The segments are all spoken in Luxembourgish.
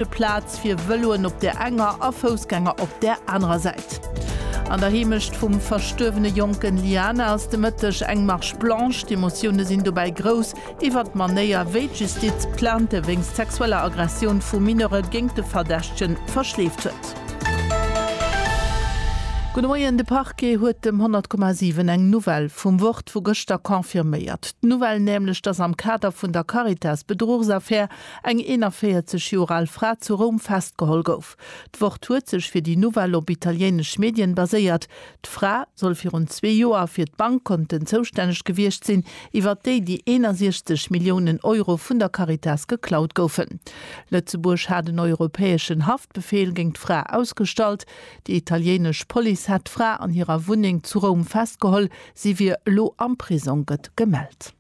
De Plaz fir Vëloen op der enger a Foussgänger op der anerer Säit. An der Heemecht vum verstuerwene Jonken Liana ass de Mëtteg eng Marche blanche. D'Emotioune sinn dobäi grouss iwwer d'Manéier, wéi d'Justiz d'Plainte wéinst sexueller Aggressioun vu Mineure géint de Verdächtege verschleeft huet. Gudde Moien, De Parquet huet dem 100,7 eng Nouvelle vum Wort vu gëschter confirméiert. D'Nouvelle nämlech, datt am Kader vun der Caritas-Bedruchsaffär Eng 41 Joer al Fra zu Roum festgeholl gouf. D'Wort huet sech fir déi Nouvelle op italiéinesch Medien baséiert. D'Fra soll virun zwee Joer fir d'Bankkonten zoustänneg gewiescht sinn, iwwert déi déi 61 Milliounen Euro vun der Caritas geklaut goufen. Lëtzebuerg hat en europäeschen Haftbefeel géint d'Fra ausgestallt. Déi italiéinesch Police hätt d'Fra an hirer Wunneng zu Roum festgeholl. Si wier elo am Prisong, gëtt gemellt.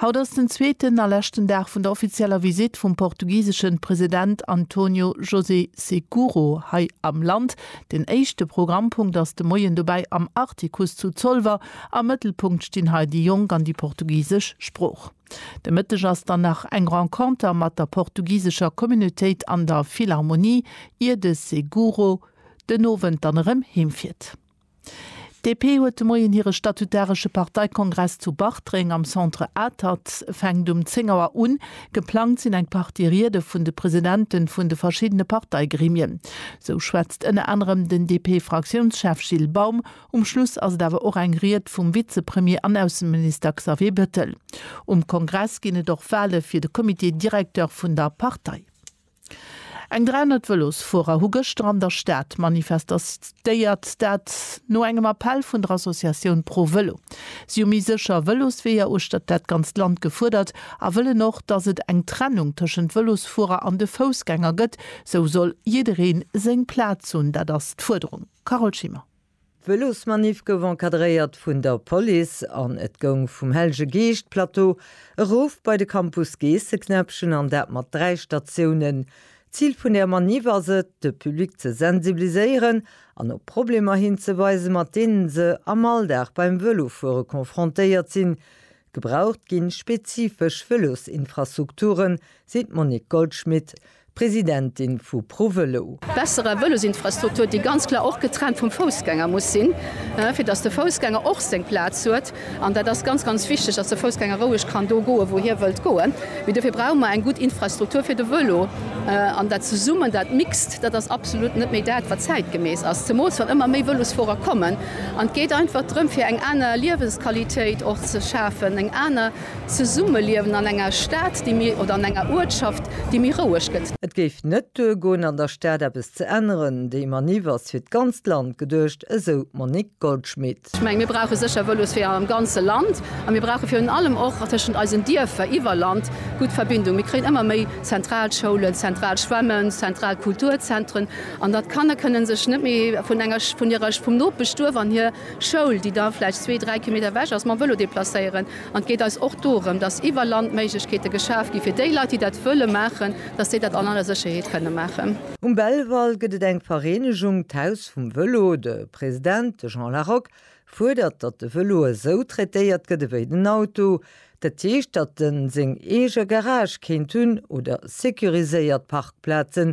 Haut ass den zweeten a leschten Dag vun der offizieller Visitt vum portugiseschen President António José Seguro hei am Land. Den éischte Programmpunkt ass de Moien dobäi am Artikuss zu Zolwer. Am Mëttelpunkt stinn hei déi Jonk an déi portugisesch Sprooch. De Mëtteg ass dann nach eng Renconter mat der portugisescher Communautéit an der Philharmonie, ier de Seguro den Owend dann erëm heemfiert. D'DP huet de Moien hire statutaresche Parteikongress zu Bartreng am Centre Atert. E fänkt um 10 Auer un. Geplangt sinn eng Partie Riede vun de Presidente vun de verschiddene Parteigremien. Sou schwätzt ënner anerem den DP-Fraktiounschef Gilles Baum. Um Schluss ass et awer och eng Ried vum Vizepremier an Ausseminister Xavier Bettel. Um Kongress ginn et och Wale fir de Comité directeur vun der Partei. Eng 300 Vëlosfuerer hu gëschter an der Stad manifestéiert, dat no engem Appell vun der Associatioun Pro Vëlo. Si hu méi sécher Vëlosweeër uechtert dat ganzt Land gefuerdert a wëllen och, datt et eng Trennung tëschent Vëlosfuerer an de Foussgänger gëtt. Sou soll jidderee seng Plaz hunn, dat ass d'Fuerderung. Carole Schimmer. D'Vëlosmaniff gouf encadréiert vun der Police an et goung vum Hellege Geescht Plateau erof bei de Campus Geesseknäppchen an dat mat 3 Statiounen. D'Zil vun der Maniff ass et, de Public ze sensibiliséieren an op Problemer hinzeweisen, mat deenen se am Alldag beim Vëlofuere confrontéiert sinn, Gebraucht ginn spezifesch Vëlosinfrastrukturen, seet d'Monique Goldschmit, Presidentin vu ProVelo. Besserer Vëlosinfrastruktur, déi ganz klar och getrennt vum Foussgänger muss sinn, fir datt de Foussgänger och seng Plaz huet. An dat ass ganz, ganz wichteg, datt de Foussgänger roueg kann do goen, wou hie wëllt goen. Mee dofir brauche mer eng gutt Infrastruktur fir de Vëlo. An dat zesummen, dat Mixt, dat ass absolut net méi dat, wat zäitgemäss ass, zemoos wann ëmmer méi Vëlosfuerer kommen. An et geet einfach drëm, fir eng aner Liewensqualitéit och ze schafen, eng aner Zesummeliewen an enger Stad, déi méi, oder an enger Uertschaft, déi méi roueg gëtt. Et géif net duergoen, an der Stad eppes ze änneren. Déi Maniff ass fir d'ganzt Land geduecht, esou d'Monique Goldschmit. Ech mengen, mir brauche sécher Vëlosweeër am ganze Land. A mir brauche virun allem och tëschent eisen Dierfer iwwer Land gutt Verbindungen. Mir kréien ëmmer méi zentral Schoulen, zentral Schwämmen, zentral Kulturzentren. An datt d'Kanner kënnen sech net méi vun enger, vun hirer, vum Nopeschduerf an hir Schoul, déi da vläicht zwee, dräi Kilometer ewech ass, mam Vëlo deplacéieren. An et geet eis och dorëm, datt iwwer Land Méiglechkeete geschaf gi fir déi Leit, déi dat wëlle maachen, datt déi dat an aller Sécherheet kënne maachen. Um Belval gëtt et eng Vereenegung, d'Haus vum Vëlo. De President, de Jean Larock, fuerdert, datt de Vëlo esou traitéiert gëtt ewéi den Auto. Dat heescht, datt en seng eege Garage kéint hunn oder securiséiert Parkplazen,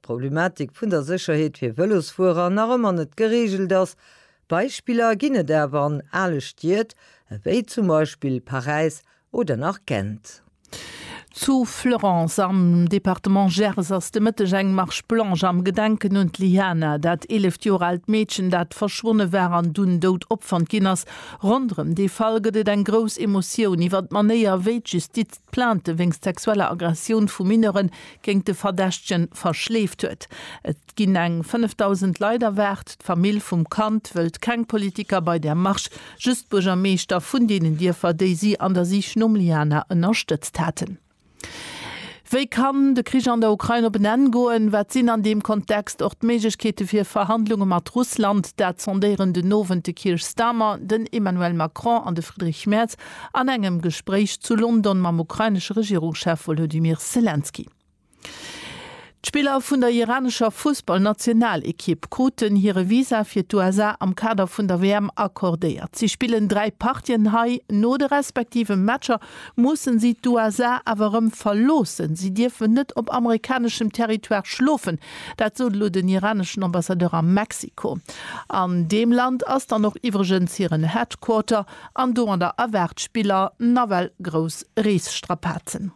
D'Problematik vun der Sécherheet fir Vëlosfuerer nach ëmmer net gereegelt ass. Beispiller ginn et awer an ale Stied, ewéi zum Beispill Paräis oder nach Gent. Zu Fleurance am Departement Gers ass de Mëtteg eng Marche blanche am Gedenken un d'Liana, dat eeleft Joer aalt Meedchen, dat verschwonne war an dunn dout opfonnt ginn ass. Ronderëm dee Fall gëtt et eng grouss Emotioun. Iwwer d'Manéier, wéi d'Justiz Plainte wéinst sexueller Aggressioun vu Mineure géint de Verdächtegen verschleeft huet. Et ginn eng 5.000 Leit erwaart. D'Famill vum Kand wëllt keng Politiker bei der Marche, just d'Buergermeeschter vun deenen Dierfer, déi si an der Sich nom Liana ënnerstëtzt haten. Wéi kann de Krich an der Ukrain op en Enn goen? Wat sinn an deem Kontext och d'Méiglechkeete fir Verhandlunge mat Russland? Dat sondéieren den Owend de Keir Starmer, den Emmanuel Macron an de Friedrich Merz. An engem Gespréich zu London mam ukrainesche Regierungschef Wolodymyr Selenskyj. D'Spiller vun der iranescher Fussballnationalekipp kruten hire Visa fir d'USA am Kader vun der WM accordéiert. Si spillen dräi Partien hei. No de respektive Matcher musse si d'USA awer erëm verloossen. Si dierfen net op amerikaneschem Territoire schlofen. Dat sot elo den iraneschen Ambassadeur a Mexiko. An deem Land ass dann och iwwregens hiren Headquarter. An do an der Erwaart d'Spiller nawell grouss Reesstrapazen.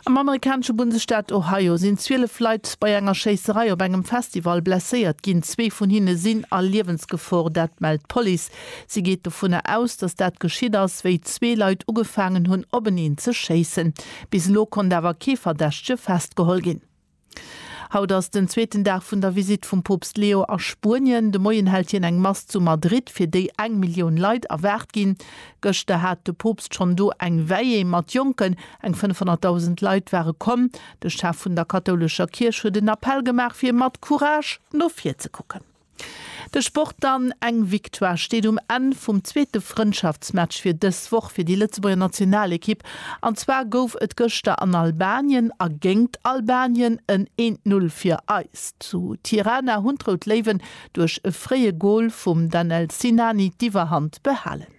Am amerikanesche Bundesstaat Ohio sinn 12 Leit bei enger Schéisserei op engem Festival blesséiert ginn. Zwee vun hinne sinn a Liewensgefor, dat mellt d'Police. Si geet dovunner aus, datt dat geschitt ass, wéi zwee Leit ugefaangen hunn, openeen ze schéissen. Bis elo konnt awer kee Verdächtege festgeholl ginn. Haut ass den zweeten Dag vun der Visitt vum Poopst Leo a Spuenien. De Moien hält hien eng Mass zu Madrid, fir déi eng Millioun Leit erwaart ginn. Gëschter hat de Poopst schonn do eng Veillée mat Jonken. Eng 500.000 Leit ware komm. De Chef vun der kathoulescher Kierch huet en Appell gemaach, fir mat Courage no vir ze kucken. De Sport dann, Eng Victoire steet um Enn vum zweete Frëndschaftsmatch fir dës Woch fir déi Lëtzebuerger Nationalekipp. An zwar gouf et gëschter an Albanien a géingt Albanien en eent Null fir eis. Zu Tirana hunn d'Rout Léiwen duerch e fréie Gol vum Danel Sinani d'Iwwerhand behalen.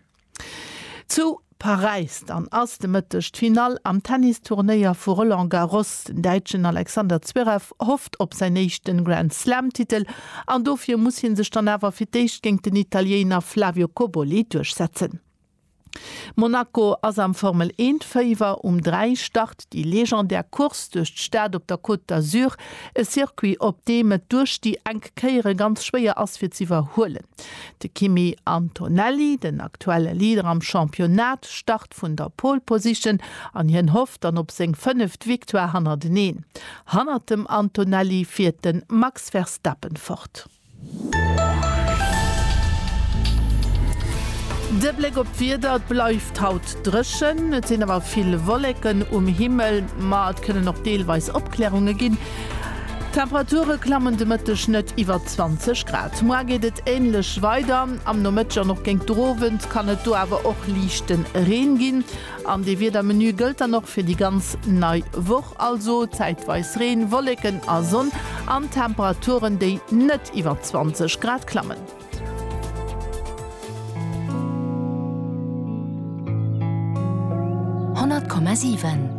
Zu Paräis dann ass de Mëtteg d'Finall am Tennis-Turnéier vu Roland Garros. Den Däitschen Alexander Zverev hofft op säin éischte Grand Slam-Titel an dofir muss hie sech dann awer fir d'éischt géint den Italiéiner Flavio Cobolli duerchsetzen. Monaco ass am Formel-Eent-Féiwer. Um 3 start déi legendär Course duerch d'Stad op der Côte d'Azur, e Circuit op deem et duerch déi enk Kéiere ganz schwéier ass fir z'iwwerhuelen. De Kimi Antonelli, den aktuelle Leader am Championnat, start vun der Pole Position an hien hofft dann op seng fënneft Victoire hannerteneen. Hannert dem Antonelli fiert de Max Verstappen fort. De Bléck op d'Wieder, Et bleift haut dréchen, et sinn awer vill Wolleken um Himmel, ma et kënnen och deelweis Opklärunge ginn. D'Temperature klammen de Mëtteg net iwwer. 20 Grad. Moar geet et änlech weider. Am Nomëtteg an och géint d'Erowend kann et do awer och liichte Reen ginn. An dee Wiedermenu gëllt dann och fir déi ganz nei Woch, also zäitweis Reen, Wolleken a Sonn an Temperaturen, déi net iwwer 20 Grad klammen. Honnert Komma siwen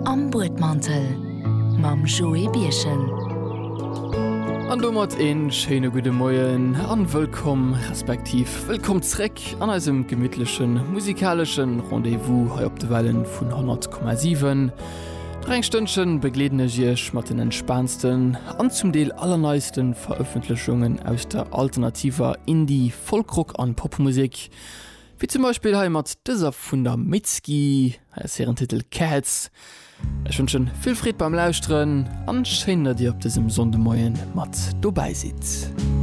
Am Buedmantel mam Joé Birchen. An domat een schéine gudde Moien an wëllkomm, respektiv wëllkomm zréck an eisem gemittlechen musikaleschen Rendez-vous hei op de Wellen vun 100,7. Nach eng Stënnchen begleeden ech iech mat den entspaansten an zum Deel allerneisten Verëffentlechungen aus der alternativer Indie-, Folk-Rock an Popmusek. Wéi zum Beispill hei mat dëser vun der Mitski, hei ass hiren Titel Cats. Ech wënschen vill Freed beim Lauschteren an schéin dat dir op dësem Sonndëmoien mat dobäi sidd.